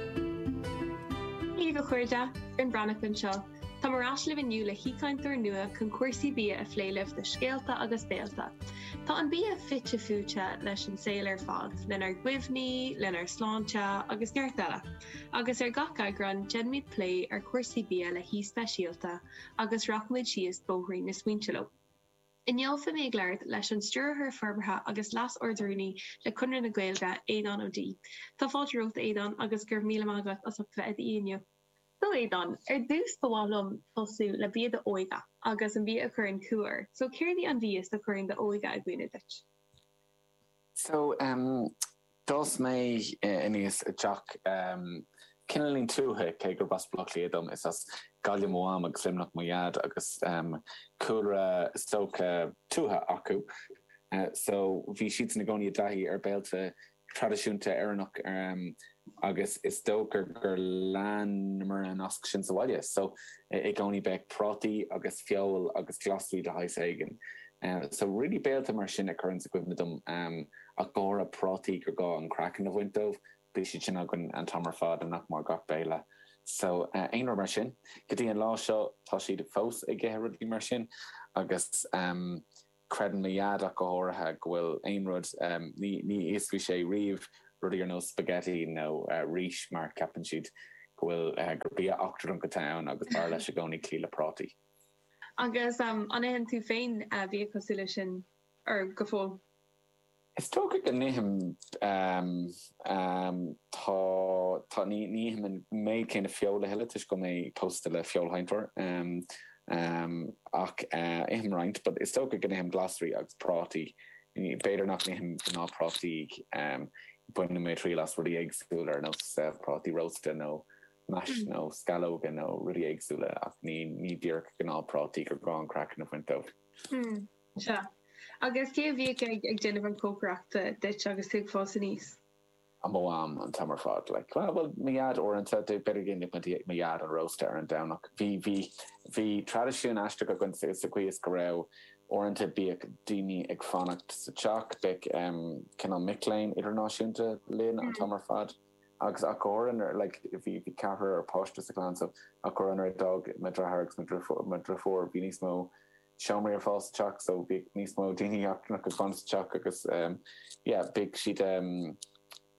Sé bhur mbeatha a chairde, Fionn Breathnach anseo. Táim ar ais libh inniu le haoichainteoir nua chun cúrsaí bia a phlé libh do Scéalta agus Béalta. Tá an bia fite fuaite leis an saol ar fad, lenár gcuimhní, lenár sláinte agus neart eile, agus ar gach eagrán déanfaimid plé ar chúrsaí bia le haoi speisialta agus rachaimid síos bóithrín na smaointe leo. Inniu beidh mé ag labhairt leis an Stiúrthóir Forbartha agus Leas-Ardrúnaí le Conradh na Gaeilge, Aodhán Ó Deá. Tá fáilte romhat, Aodhán, agus go raibh míle maith agat as ucht a bheith anseo inniu. So Aodhán, ar dtús ba mhaith liom tosú le bia d'óige agus an bia a chuireann cumha ort, so céard í an bia a chuireann d'óige i gcuimhne duit? So, d'fhás mé aníos i dteach cineáilín tuaithe, cé gurb as Baile Átha Cliath dom. Is as Gaillimh mo mham agus Luimneach mo dhaid agus cúlra, is dócha, tuaithe acu. So, bhí siadsan i gcónaí i dtaithí ar bhéilte traidisiúnta Éireannacha agus is dócha gur lean mar an nós sin sa bhaile so i gcónaí, bheadh prátaí agus feoil agus glasraí de shaghas éigin so really béilte mar sin a chuireann sé i gcuimhne dom ach go háirithe prátaí gur gá an craiceann a bhaint dóibh, bhí siad sin againn an t-am ar fad nach mór gach béile so aon rud mar sin. Go dtí an lá seo tá siad fós ag ithe rudaí mar sin agus. Creideann mo Dhaid ach go háirithe go bhfuil aon rud, ní íosfaidh sé riamh rudaí ar nós spaghetti nó rís mar ceapann siad go bhfuil, gur bia eachtrannach atá ann agus b'fhearr leis i gcónaí cloí le prátaí. Agus an itheann tú féin bia cosúil leis sin go fóill? Is dócha go n-ithim, tá, tá, ní, ní ithim an méid céanna feoil a thuilleadh toisc go bhfuil mé pósta le feoilséantóir, ach ithim roinnt, but is dócha go n-ithim glasraí agus prátaí, b'fhéidir nach n-ithim gnáth prátaí, bainfidh mé triail as rudaí éagsúla ar nós prátaí rósta nó mash nó scallóga nó rudaí éagsúla ach ní, ní díreach gnáth prátaí gur gá an craiceann a bhaint dóibh. Sea, agus cé a bhíodh ag déanamh an chócaireachta duit agus tú ag fás aníos? Mo Mham, an t-am ar fad. Like, bhuel, mo Dhaid, uaireanta, b'fhéidir go ndéanfadh mo Dhaid an rósta ar an Domhnach. Bhí, bhí, bhí traidisiún aisteach againn sa, sa gcaoi is go raibh, uaireanta, bhíodh daoine ag fanacht sa teach, bheadh ehm, cineál mic léinn idirnáisiúnta linn an t-am ar fad agus ach go háirithe nuair, like, bhí, bhí ceathrar páiste sa chlann so ach go háirithe nuair a d'fhág mo dheartháir agus mo, mo dheirfiúr, bhí níos mó. seomraí ar fáil sa teach so bhíodh níos mó daoine eachtrannach ag fanacht sa teach agus yeah bhíodh siad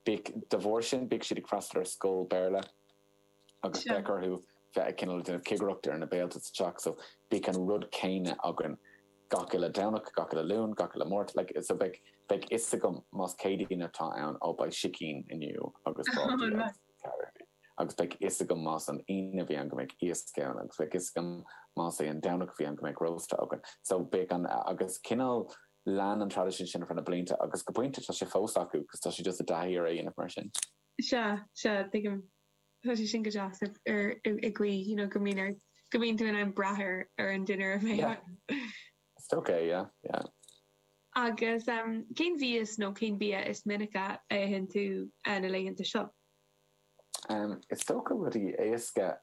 bhíodh de bharr sin bhíodh siad ag freastal ar scoil Béarla agus bheadh orthu bheith ag cineál déanamh cigireacht ar na béilte sa teach so bhíodh an rud céanna againn gach uile Domhnach, gach uile Luan, gach uile Máirt like so bheadh bheadh fhios agam más Céadaoin atá ann oh beidh sicín inniu agus béilí agus. Gravy. Agus beidh fhios agam más an Aoine a bhí ann go mbeadh iasc ann agus beidh fhios agam más é an Domhnach a bhí ann go mbeadh rósta againn. So bíodh an, agus cineál lean an traidisiún sin ar feadh na blianta agus go pointe tá sé fós acu cos tá sé just i dtaithí ar é a dhéanamh mar sin. Sea, sea, tuigim. Tá sé sin go deas ar, ar, i gcaoi, you know, go mbíonn ort, go mbíonn tú in ann brath ar, ar an dinnéar a bheidh acu. Is dócha, yeah, yeah. Agus cén mhias nó cén bia is minice a itheann tú na laethanta seo? Is dócha rudaí éasca.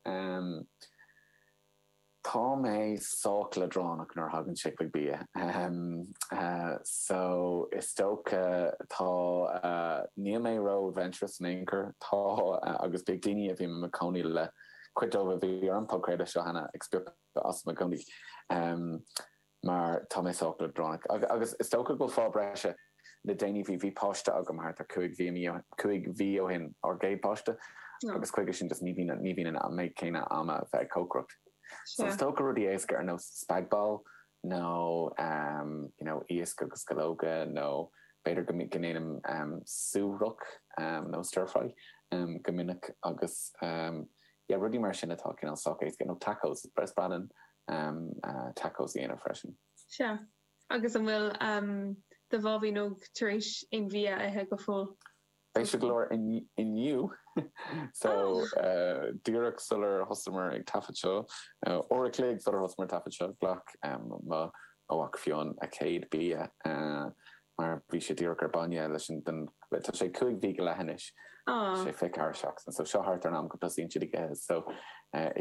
Tá mé sách leadránach nuair a thagann sé chuig bia. So, is dócha, tá, níl mé ró adventurous in aon chor. Tá, agus beidh daoine a bhí mé i mo chónaí le, cuid dóibh a bhí ar an bpodchraoladh seo cheana, ag spochadh asam i gcónaí mar tá mé sách leadránach. Agus is dócha go bhfuil fáth breise le déanaí. Bhí páiste agam thart ar cúig mhí ó shin, ár gcéad páiste, agus chuige sin just ní bhíonn an méid céanna ama bheith ag cócaireacht. So is dócha rudaí éasca ar nós spag ball nó you know iasc agus sceallóga nó b'fhéidir go ndéanaim stobhach nó stir fry go minic agus yeah rudaí mar sin atá cineál sách éasca nó tacos is breá, is breá linn tacos a dhéanamh freisin. Sea. Agus an bhfuil do bháibín óg tar éis aon bhia a ithe go fóill? Spéisiúil go leor inniu. So díreach sular thosamar ag taifead seo, uair a chloig sular thosamar ag taifead seo, ghlac mo mhac Fionn a chéad bhia. mar bhí sé díreach ar bainne leis an, den, tá sé cúig mhí go leith anois, sé fiche ceathair seachtain, so seo thart ar an am go dtosaíonn siad ag ithe, so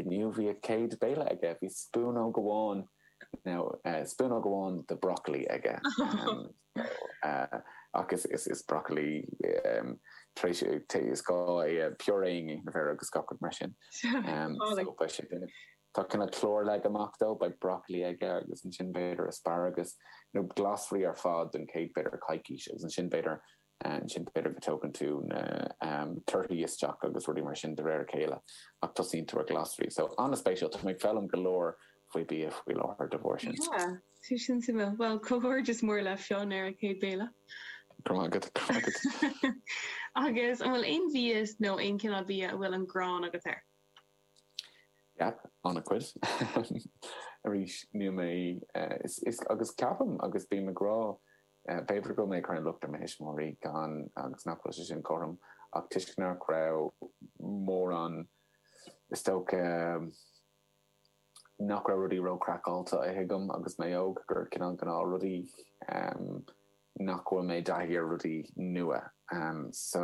inniu bhí a chéad béile aige, bhí spúnóg amháin, now spúnóg amháin de broccoli aige, ach is, is, is broccoli tar éis, is gá é a puréing, a bheir agus gach rud mar sin, so beidh sé, Tá cineál clár leagtha amach dó, beidh broccoli aige agus ansin b'fhéidir asparagus, nó glasraí ar fad don chéad b'fhéidir coicís agus ansin b'fhéidir, ansin b'fhéidir go dtógann tú na torthaí isteach agus rudaí mar sin de réir a chéile ach tosaíonn tú ar ghlasraí. So, an-spéisiúil, tá mé ag foghlaim go leor faoi bia faoi láthair de bharr sin. Yeah, tá sin suimiúil. Bhuel, comhghairdeas mór le Fionn ar a chéad béile! Go raibh maith agat, go raibh maith agat. Agus an bhfuil aon mhias nó aon cineál bia a bhfuil an ghráin agat air? Yep, an-chuid. Arís, níl mé, is, agus ceapaim, agus bím ag rá, b'fhéidir go bhfuil mé ag cur an locht ar mo thuismitheoirí gan, agus nach bhfuil sé sin cothrom, ach toisc nach raibh mórán, is dócha, nach raibh rudaí ró-chraiceáilte á ithe agam agus mé óg, gur cineál gnáthrudaí, nach bhfuil mé i dtaithí ar rudaí nua em so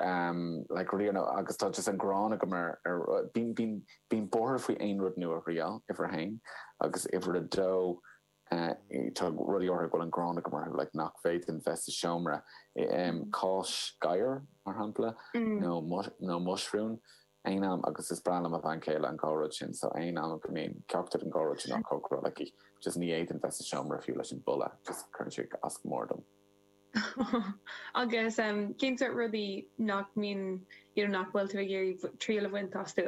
em like riamh nó agus tá just an ghráin agam ar ar bím bím bím buartha faoi aon rud nua riamh uimhir a haon agus uimhir a dó eh tá rudaí orthu a bhfuil an ghráin agam orthu mar nach bhféadfainn bheith sa seomra i em cáis gabhair mar shampla nó nó muisriúin aon am agus is breá le mo bhean chéile an dá rud sin so aon am go mbíonn ceachtar den dá rud sin á cócaráil aici just ní fhéadfainn bheith sa seomra fiú leis an boladh just cuireann sé as go mór dom. Agus cén sort rudaí nach mbíonn, you know, nach bhfuil tú ag iarraidh triail a bhaint astu?